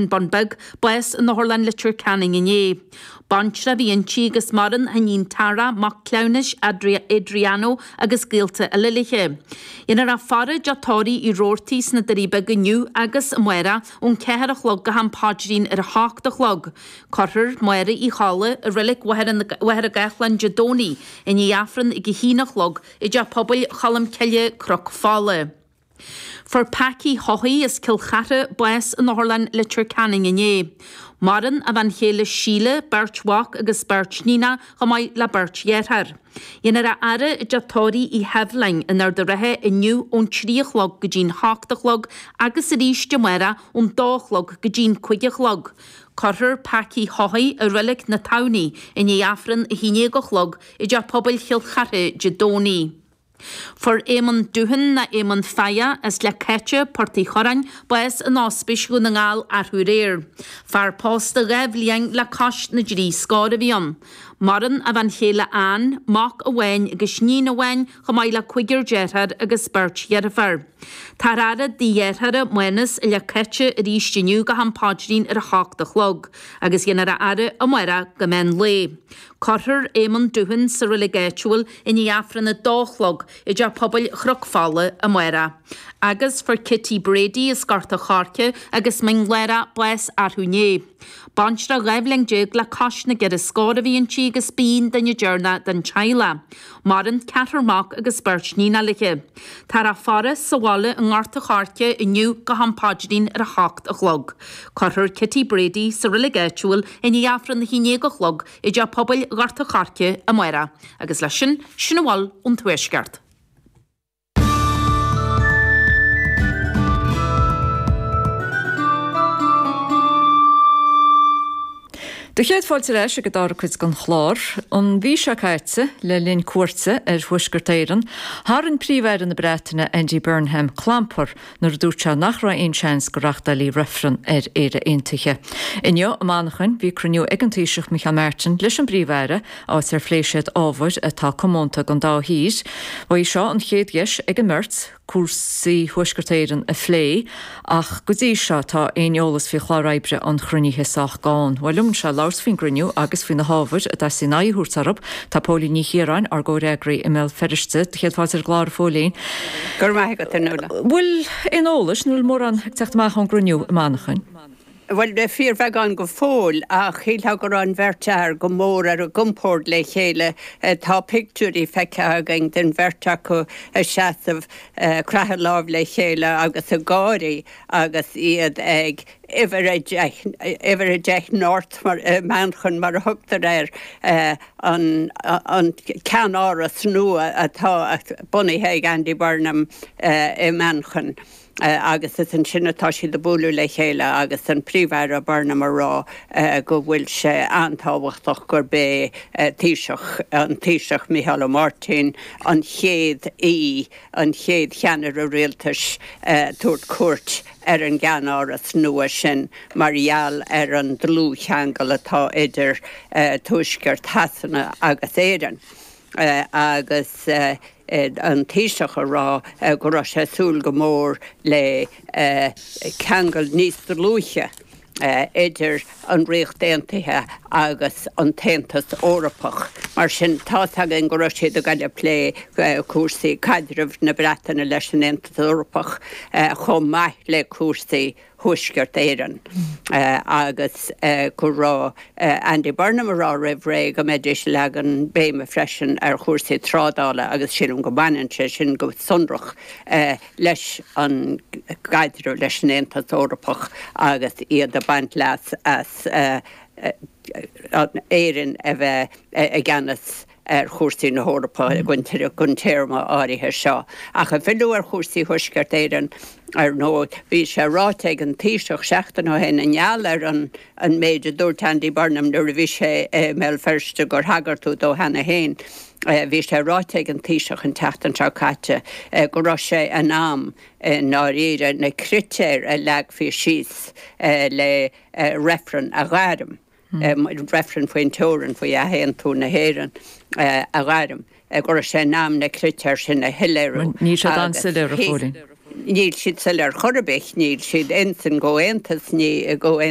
Bun Beag, bás in Otharlann Leitir Ceanainn inné. Baintreach a bhí inti agus maireann a hiníon Tara, mac cleamhnais Adriano agus gaolta eile léi. Dhéanfar a faire i dteach tórraimh Uí Rabhartaigh sna Doirí Beaga inniu agus amárach ón 4 a chlog go ham paidrín ar a 8 a chlog. Cuirfear Maura Uí Cholla i Reilic Mhachaire Gathlán Dé Domhnaigh i ndiaidh Aifreann ag a haon a chlog i dTeach Pobail Cholmcille, Cnoc Fola. Fuair Packie Haughey as Cill Chartha bás in Otharlann Leitir Ceanainn inné. Maireann a bhean chéile Síle, beirt mhac agus beirt níonach chomh maith le beirt dhearthár. Dhéanfar a fhaire i dteach tórraimh Uí Sheibhleáin in Ard a' Rátha inniu ón trí a chlog go dtí'n h-ocht a chlog agus arís amárach ón dó a chlog go dtí'n cúig a chlog. Cuirfear Packie Haughey i Reilic na Tamhnaí i ndiaidh Aifreann a haon déag a chlog i dTeach Pobail Chill Chartha Dé Domhnaigh. Fuair Éamon Doohan ná Éamon Failla as Leath Caitte, Port Uí Chuireáin, bás in Ospís Dhún na nGall arú aréir. Fear pósta dhá bhliain le cois na dtrí scór a bhí ann. Maireann a bhean chéile Anne, mac amháin agus iníon amháin chomh maith le cúigear deartháir agus beirt dheirféar. Táthar á fhaire i dtigh a dhearthára Mánas i Leath Caitte arís inniu go ham páidrín ar a hocht a chlog agus dhéanfar a fhaire amárach go meán lae. Cuirfear Éamonn Doohan sa reilig áitiúil i ndiaidh Aifreann a dó a chlog i dteach pobail Chnoc Fola amárach agus fuair Kitty Brady as Gort a' Choirce agus Mín Lárach bás arú inné. Baintreach dhá bhliain déag le cois na gceithre scór a bhí inti agus b'í an duine deireanach den teaghlach. Maireann ceathrar mac agus beirt níonach léithe. Táthar á faire sa bhaile i nGort a Choirce inniu go ham paidrín ar a h-ocht a chlog. Cuirfear Kitty Brady sa reilig áitiúil i ndiaidh Aifreann a haon déag a chlog i dTeach Pobail Ghort a Choirce amáireach. Agus leis sin, sin a bhfuil ón Tuaisceart. Do chéad fáilte ar ais ag an dara cuid den chlár. An mhí seo caite, le linn cuairte ar Thuaisceart Éireann, tharraing Príomh-Aire na Breataine Andy Burnham clampar nuair a dúirt sé nach raibh aon seans go reáchtálfaí reifreann ar Éire Aontaithe. Inniu, i Manchain, bhí cruinniú ag an Taoiseach Micheál Martin leis an bPríomh-Aire, áit ar phléigh siad ábhair atá comónta don dá thír. Ba í seo an chéad dheis ag an mbeirt cúrsaí Thuaisceart Éireann a phlé, ach go dtí seo, tá aon eolas faoi chlár oibre an chruinnithe sách gann. Bhuel, liom anseo le labhairt faoin gcruinniú agus faoi na hábhair a dteastaíonn aghaidh a thabhairt orthu, Tá Póilín Ní Chiaráin, ár gcomhfhreagraí i mBéal Feirste, do chéad fáilte ar an gclár, a Phóilín. Go raibh maith agat, a Nuala. Bhfuil aon eolas, an bhfuil mórán ag teacht amach ón gcruinniú i Manchain? Bhuel, fíorbheagán go fóill, ach shílfeá go raibh an bheirt fhear go mór ar a gcompord le chéile. Tá pictiúirí feicthe againn den bheirt acu ag seasamh, ag creathadh lámh le chéile agus ag gáirí agus iad ag. uimhir a deich, uimhir a deich North, i Manchain mar a thugtar air, an ceannáras nua atá bunaithe ag Andy Burnham i Manchain agus is ansin atá siad ag bualadh le chéile agus an Príomh-Aire Burnham ag rá go bhfuil sé an-tábhachtach gurb é Taoiseach, an Taoiseach Micheál Ó Máirtín, an chéad aoi. an chéad cheannaire rialtais ag tabhairt cuairt ar an gceannáras nua sin mar gheall ar an dlúthcheangal atá idir tuaisceart Shasana agus Éirinn agus an Taoiseach ag rá go raibh sé ag súil go mór le ceangal níos dlúithe. idir an Ríocht Aontaithe agus an tAontas Eorpach. Mar sin, tá a fhios againn go raibh siad ag dul ag plé cúrsaí caidreamh na Breataine leis an Aontas Eorpach chomh maith le cúrsaí Thuaisceart Éireann agus go raibh Andy Burnham ag rá roimh ré go mbeidís ag leagan béime freisin ar chúrsaí trádála agus sílim go mbaineann sé sin go sonrach leis an gcaidreamh leis an Aontas Eorpach agus iad ag baint leas as Éirinn a bheith i gceannas ar chúrsaí na hEorpa don téarma áirithe seo. Ach ag filleadh ar chúrsaí Thuaisceart Éireann, ar ndóigh, bhí sé ráite ag an Taoiseach seachtain ó shin, i ngeall ar an. an méid a dúirt Andy Burnham nuair a bhí sé i mBéal Feirste gur thagair tú dó cheana féin. Bhí sé ráite ag an Taoiseach an tseachtain seo caite go raibh sé in am i ndáiríre na critéir a leagfaí síos le reifreann a ghairm, reifreann faoin teorainn, faoi athaontú na hÉireann a ghairm, go raibh sé in am na critéir sin a shoiléiriú. Níl siad an-soiléir a Phóilín. Níl siad soiléir chor ar bith, níl siad in sync, ó aontas, ní.